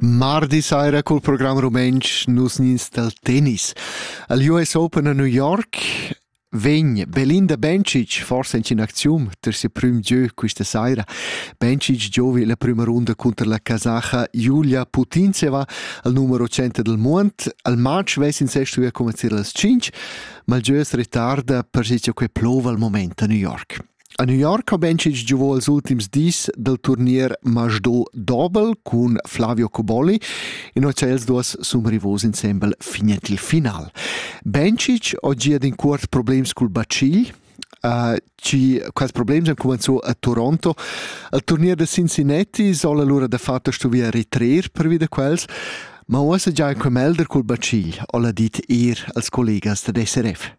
Mardi saira cul program rumentsch nus nins dal tennis. Al US Open a New York vegn Belinda Bencic forse in aczium ter se prüm gieu questa saira. Bencic giovi la prima runda contro la casacha Julia Putintseva al numero 100 del mond. Al match vesin sestu a commenzare las 5, ma il gieu es retarda per si che plova al moment a New York. A New York ha Bencic giovù ils ultims dis dal turnier Masdo Dobel cun Flavio Coboli e noi els duas sun rivos insembel finet il final. Bencic ho gia in cuort problems cul bacigl, Uh, ci quels problems han cumanzo a Toronto. Al turnier da Cincinnati soll allora da fatto stu via ritrer per via da quels, ma uossa già in quemel der cul bacigl, ho la dit ir als collegas da SRF.